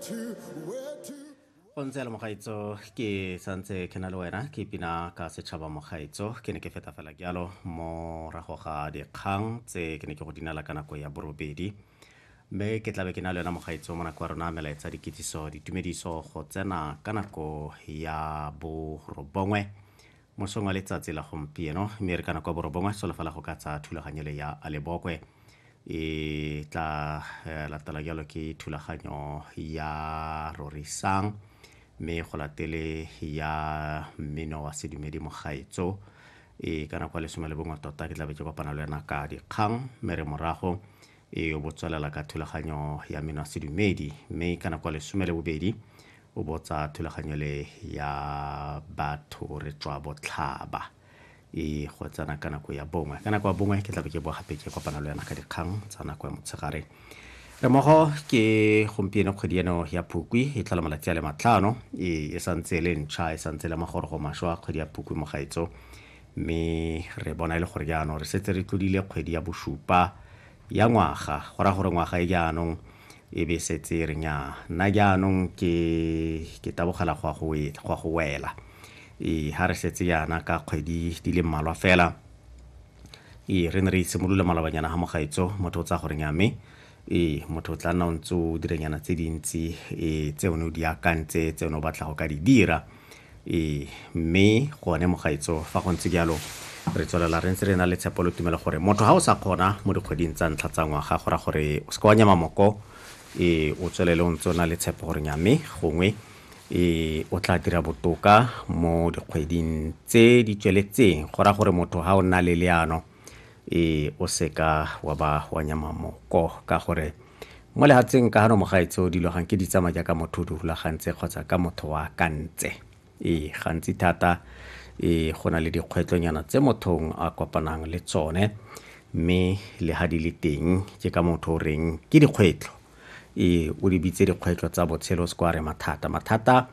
go ntse le mogaitso ke santse ke na le wena ke pina ka setšhaba mogaitso ke ne ke feta fela ke yalo morago ga dikgang tse ke ne ke go dinela ka nako ya borobedi mme ke tlabe ke na le yona mogaitso mo nako ya rona melaetsa dikitsiso ditumediso go tsena ka nako ya borobongwe Mosong wa letsatsi la gompieno mme re kana kwa borobongwe solofela go ka tsa thulaganyo le ya Alebokwe e tla eh, latela jalo ke thulaganyo ya Rorisang mme go latele ya mmino wa sedumedi mogaetso e kana kwa lesome le bongwe tota ke tlabe ke kopana le wena ka dikgang mme re morago e o bo tswelela ka thulaganyo ya meno a sedumedi mme ka nako ya lesome le bobedi o botsa thulaganyo le ya batho re tswa botlhaba e go tsena ka nako ya bongwe ka nako ya bongwe ke tlabe ke boa gape ke kopana le yana ka dikgang tsa nako ya motshegare re mogo ke gompieno kgwedi eno ya phukwi e tlhola malatsi a le matlhano e, e santse e le ntšha e santse e le magorogo maswa kgwedi ya phukwi mo gaetso mme re bona e le gore jaanong re setse re tlodile kgwedi ya bosupa ya ngwaga go raya gore ngwaga e jaanong e be setse re nya nna jaanong ke ke tabogela go a go wela ee ga re setse yana ka kgwedi di le mmalwa fela ee re ne re itshimolole malobanyana ga mogaetso motho o tsaya gore nya mme Ee, motho o tla nna o ntse o diranyana tse dintsi ee tse one o di akantse tse one o batla go ka di dira ee mme gone mogaetso fa go ntse jalo re tswelela re ntse re na le tshepo le tumelo gore motho ga o sa kgona mo dikgweding tsa ntlha tsa ngwaga go ra gore o se ka wa nyama moko ee o tswelele o ntse o na le tshepo gore nyame gongwe ee o tla dira botoka mo dikgweding tse di tsweletseng go ra gore motho ga o nna le leano ee o seka wa ba wa nyama moko ka gore mo lehatsheng ka gano mogaetseo dilo gang ke di tsama jaaka motho o di rulagantse kgotsa ka motho wa kantse ee gantsi thata ee go na le dikgwetlonyana tse mothong a kopanang le tsone mme le ga di le teng ke ka motho o reng ke dikgwetlho ee o di bitse dikgwetlho tsa botshelo se kwa re mathata mathata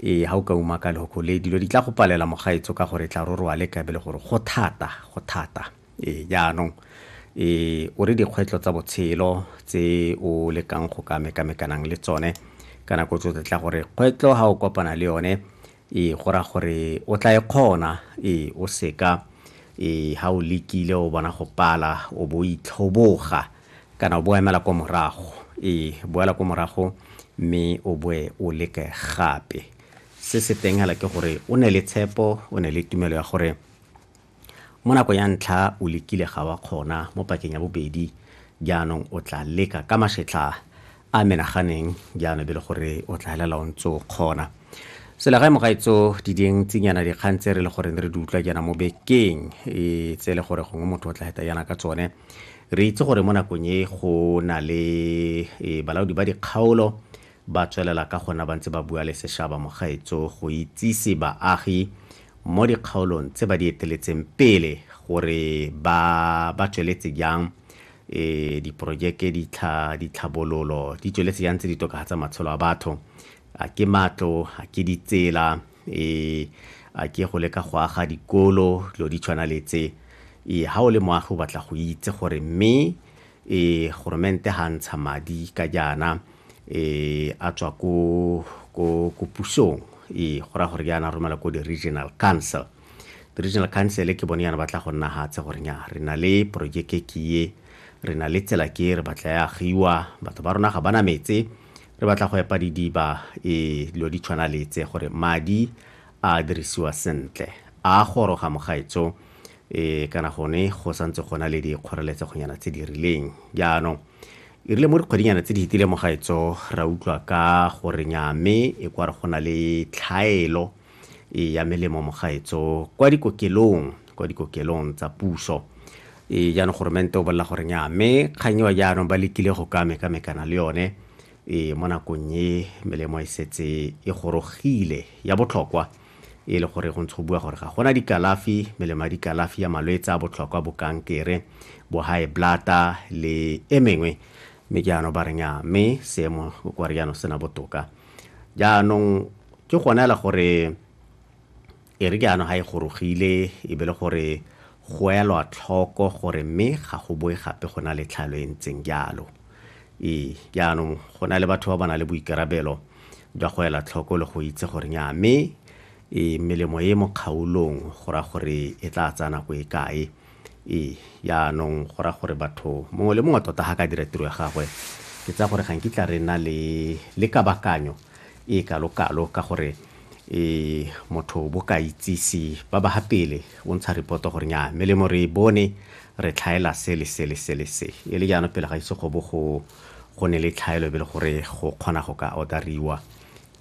ee ga o ka uma ka lehoko le dilo di tla go palela mogaetso ka gore tla roroa le kabe le gore go thata go thata ee jaanong ee o re dikgwetlho tsa botshelo tse o lekang go ka mekamekanang le tsone ka nako tsotlhe tla gore kgwetlho ga o kopana le yone Ee, go raya gore o tla e kgona. Ee, o seka. Ee, ha o lekile o bona go pala, o bo o itlhoboga, kana o bo o emela ko morago. Ee, boela ko morago mme o boe o leke gape. Se se teng hela ke gore o nne le tshepo, o nne le tumelo ya gore. Mo nakong ya ntlha o lekile ga wa kgona, mo pakeng ya bobedi jaanong o tla leka ka masetlha a menaganeng jaanong be le gore o tla helela o ntse o kgona. Selegae mogaetso di dintsinyana dikgang tse re le goreng re di utlwa jaana mo bekeng e tse le gore gongwe motho o tla heta jaana ka tsone re itse gore mo nakong e go na le e, balaodi ba dikgaolo ba tswelela ka gona ba ntse ba bua le seshaba mogaetso go itsise baagi mo dikgaolong tse ba di eteletseng pele gore ba ba tsweletse jang e diporojeke ditlhabololo di tsweletse jang tse di tokagatsa matshelo a batho a ke matlo a ke ditsela e a ke go leka go aga dikolo dilo di tshwana le tse e ga o le moagi o batla go itse gore mme e goromente ha ntsha madi ka jaana e a tswa ko ko ko pusong e go ra gore jaana romela ko di-regional council di-regional council ke bone yana ba tla go nna gatse gore nya re na le projeke ke ye re na le tsela ke re batla ya agiwa batho ba rona ga bana metse re batla go epa didiba e dilo di tshwana letse gore madi a dirisiwa sentle a goroga mogaetso e kana gone go santse gona le dikgoreletsegonyana tse di rileng jaanong e rile mo dikgwedinyana tse di fetile mogaetso ra utlwa ka gore nya mme e kwa re go na le tlhaelo e ya melemo mogaetso kwa dikokelong kwa dikokelong tsa puso e jaanong goromente o bolela gore nya mme kgang eo jaanong ba lekile go ka mekamekana le yone e mo nakong e melemo e setse e gorogile ya botlhokwa e le gore go ntsho bua gore ga gona dikalafi melemo ya dikalafi ya malwetse a botlhokwa bo kankere bo high blata le e mengwe mme ke ano ba reng ya mme seemo kwa re jaanong sena botoka jaanong ke gona le gore e re jaanong ga e gorogile e be le gore go elwa tlhoko gore mme ga go boe gape go na le tlhalo e ntseng jalo ee jaanong go na le batho ba ba na le boikarabelo jwa go ela tlhoko le go itse gore nya mme e melemo e mo kgaolong go ra gore e tla tsaya nako e kae e yaanong go ra gore batho mongwe le mongwe tota ga ka dira tiro ya gagwe ke tsa gore ga nkitla re na le le kabakanyo e kalo-kalo ka gore e motho bo ka itsise ba ba ga pele o ntsha repoto gore nya melemo re e bone re tlhaela se le se le se le se e le jaanong pele ga ise go bo go go ne le tlhaelo be le gore go kgona go ka order-riwa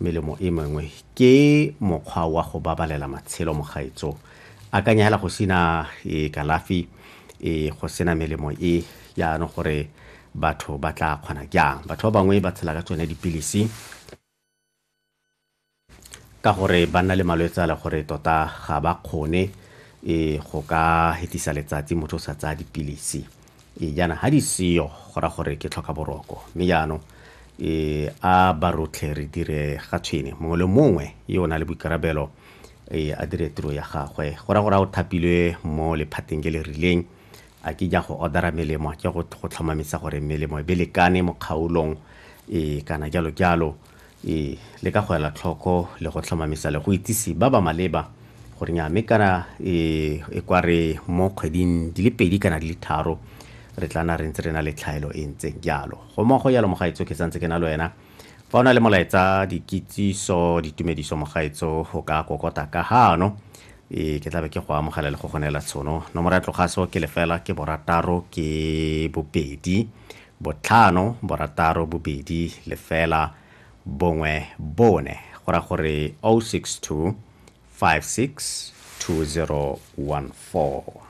melemo e mengwe ke mokgwa wa go babalela matshelo mogaetso akanya hela go sena e kalafi e go sena melemo e yaanong gore batho ba tla kgona jang batho ba bangwe ba tshela ka tsone dipilisi ka gore ba nna le malwetse a le gore tota ga ba kgone e go ka hetisa letsatsi motho o sa tsaya dipilisi e jaana ga di seyo go ra gore ke tlhoka boroko mme jaanong e a ba rotlhe re dire ga tshwene mongwe le mongwe yo o na le boikarabelo e a dire tiro ya gagwe go ra gore a o thapilwe mo lephateng le le rileng A ke ja go order-a melemo ke go tlhomamisa gore melemo e be lekane mo kgaolong e kana jalo jalo. E le ka go ela tlhoko le go tlhomamisa le go itsise ba ba maleba gore nya mme kana e e kwa re mo kgweding di le pedi kana di le tharo re tla na re ntse re na le tlhaelo e ntseng jalo. Go mmogo jalo Mogaetsho ke santse ke na le wena. fa o na le molaetsa dikitsiso ditumediso mogaetso o ka kokota ka gano ee ke tlabe ke go amogela le go go neela tshono nomoro ya tlogaso ke lefela ke borataro ke bobedi botlhano borataro bobedi lefela bongwe bone go ra gore 062 56 2014